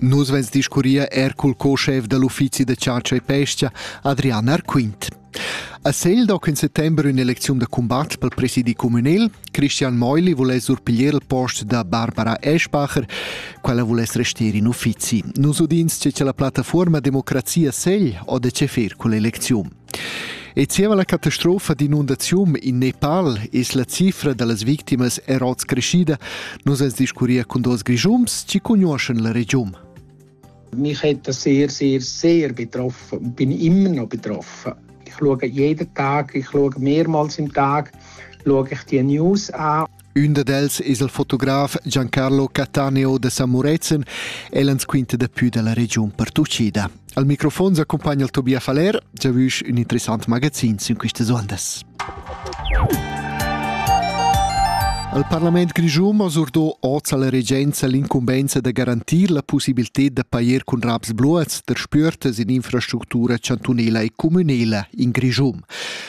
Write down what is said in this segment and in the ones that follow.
Nus vess discurria er cul co-schef da l'uffizi da chatscha e pescha, Adrian Arquint. A Segl do in settembre un'eleziun da combat pel presidi communal. Christian Meuli voless surpiglier il post da Barbara Eschbacher, quella voless restare in uffizi. Nus udins che c'è la plattaforma Democrazia Segl o de che fer con l'eleziun. E zieva la catastrofa d'inundaziun in Nepal es la cifra da las victimas er hoz creschida. Nus ans discurria cun duos Grischums chi cugnuoschan la regiun. Mich hat das sehr, sehr, sehr betroffen und bin immer noch betroffen. Ich schaue jeden Tag, ich schaue mehrmals im Tag, schaue ich die News an. Ün dad els es il fotograf Giancarlo Cattaneo da San Murezzan. El ans quinta dapü da la regiun pertuchida. Al microfon s'accumpagna il Tobias Faller, già vüsch ün interessant magazin sün quistas ondas. Al Parlament grischun ha surdò oz alla regenza l'incumbenza da garantir la possibilità da pair cun raps bluats der spürtas in infrastructura chantunela e communela in Grischum.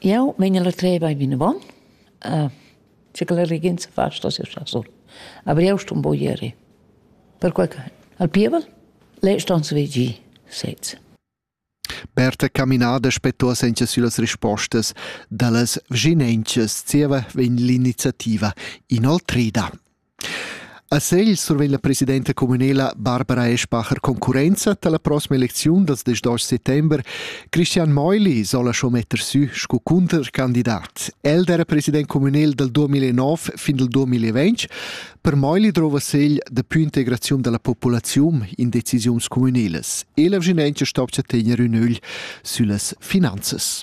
Jau vegn a la treva e vinavant. Uh, sche che la regenza fa sto sia chasur. Aber jau sto un po' ieri. Perquai che al pievel le ston svegli sez. Berta caminada spettua senza sulas rispostas da las vginenchas zieva vegn l'iniziativa inoltrida. A Segl survegn la presidenta communala Barbara Eschbacher concurrenza tar la proxima elecziun dals diesch settember. Christian Meuli sola schon metter sü sco cuntercandidat. El era president communal dal 2009 fin dal 2020. Per Meuli drova Segl daplü integraziun da la populaziun in decisiuns communalas. E la Vginentia stopcha tegner ün ögl süllas finanzas.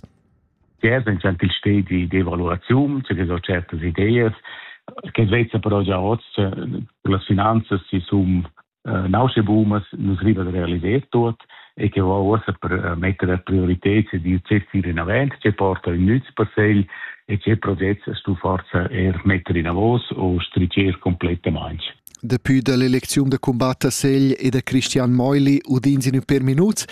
che es ün gentil stedi di valuraziun, che ho certas ideas, che vezza però già hoz las finanzas si sum nausche boomas nus riva da realiser tuot e che ho uossa per metter a priorited se di zet ir in avant, che porta in nüz per segl e che progetts stu forza er metter in avos o stricer completamente. Dapi dall'elecziun da cumbat a Segl e da Christian Meuli udins in per minuts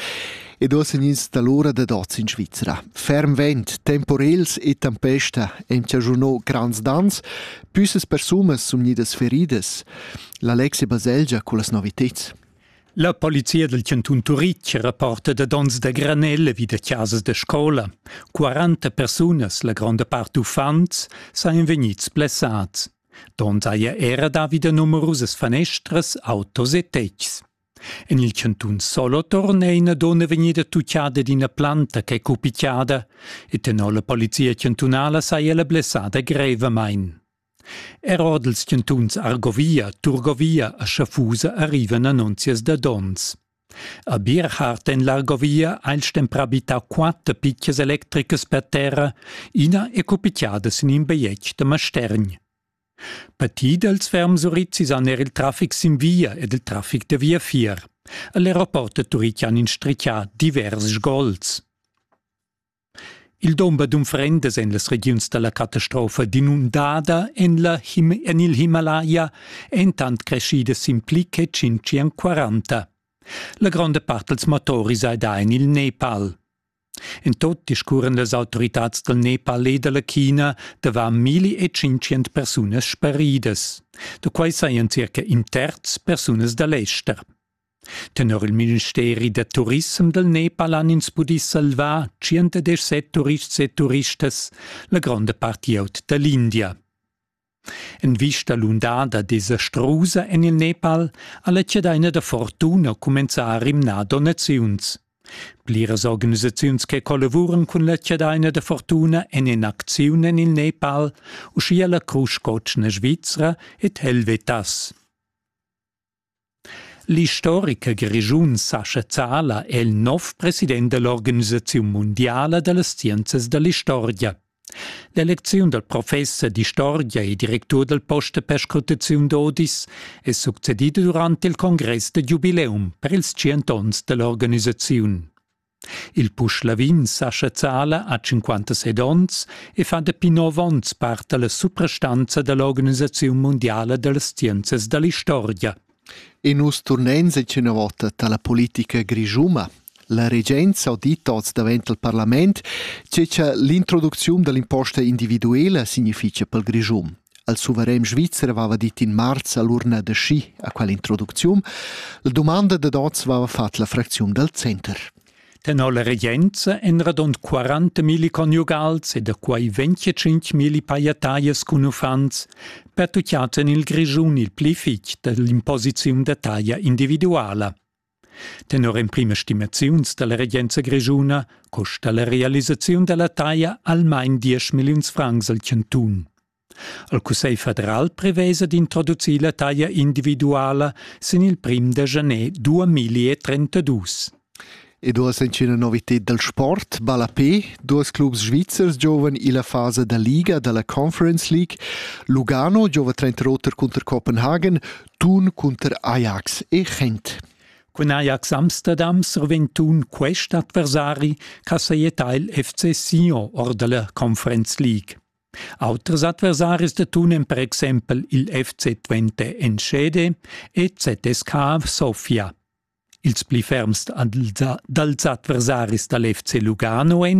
ed osen ins dall'ura dad oz in Svizra. Ferm vent, temporels e tempesta ein chaschunò grands dans, püssas persumas sun gnidas feridas. L'Alexia Baselgia con las noviteds. La polizia del cantun Turitg rapporta da dons da granelle vi da casas da scola. 40 persunas, la gronda part uffants, sain vegnids blessats. Donn saja era davida numerusas fanestras, autos e tetgs. En il cantun Solothurn è ina donna vegnida tucciada d'ina planta ch'è cupitiada e tenor la polizia chantunala saja la blessada grevamain. Er ord ils chantuns Argovia, Turgovia e Schaffusa arrivan annunzias da donns. A Bierhard en l'Argovia ha il stemprà bittà quatter pitgas electricas per terra, ina è cupitiada sin in bajetg da Mastergn. Partì dals ferms urizis han er il traffic sin via ed il traffic da viafier. A l'aeroport da Turican in strichà divers sgols. Il dumber d'unfrendas en las regiuns da la catastrofa d'inundada en, la Him en il Himalaya èn tant creschidas sin pli che 540. La gronda part dals motoris hai dà en il Nepal. En tot discurran las autoritads dal Nepal e da la China davant 1500 persunas sparidas. Da quai sajan circa in terz persunas da l'ester. Tenor il ministeri da turissem dal Nepal han ins pudì salvar 117 turists e turistas, la gronda part glieud da l'India. En vista l'undada desastrusa en il Nepal ha la chadaina da fortuna cumenzà a rimnar donaziuns. Pliras organisaziuns che collavuran cun la chadaina da fortuna en in'acziun en il Nepal, uschia la Crusch Cotschna Svizra ed Helvetas. L'istoricher grischun sa sezzala è il nov president dell'organisaziun mundiala da las scienzas da l'istorgia. L'elecziun dal professer d'istorgia e directur dal post da perscrutaziun d'Odis è succedida durant il congress da giubileum per ils tschient onns da l'organisaziun. Il pusch lavin sa chazzala a 57 onns e fa dapi nov onns part dalla suprastanza dall'organisaziun mundiala dallas scienzas dall'istorgia. E nus turnein secina vota dalla politica grischuma. La regenza ha dit oz davent al parlament che l'introducziun dall'imposta individuela significa pel Grischum. al suverän svizzer vava dit in marz a l'urna da schi a quella introducziun, la domanda da dots vava fat la fracziun dal center. Tenor la regenza en radont 40.000 conjugals e da quai 25.000 paiataias cun uffants pertucciaten il Grischun il pli fitg dall'imposiziun da taglia individuala. Tenor emprimas stimaziuns dalla regenza grischuna costa la realisaziun dalla taglia almain diesch milliuns francs al chantun. Il Cussegl federal prevesa d'introducir la taglia individuala sin il prim da janer 2032. E duas entschena novität dal sport, ballapé, duas clubs svizzers giovan illa fasa da liga da la Conference League. Lugano giova trenta roter cunter Copenhagen, tun cunter Ajax e Gent. Cun Ajax Amsterdam survegn tun quest adversari che sajetta il FC Sion or della Conference League. Auters adversaris de tun en per exempel il FC Twente Enschede e ZSK Sofia. Ils pli ferms dals adversaris dal FC Lugano en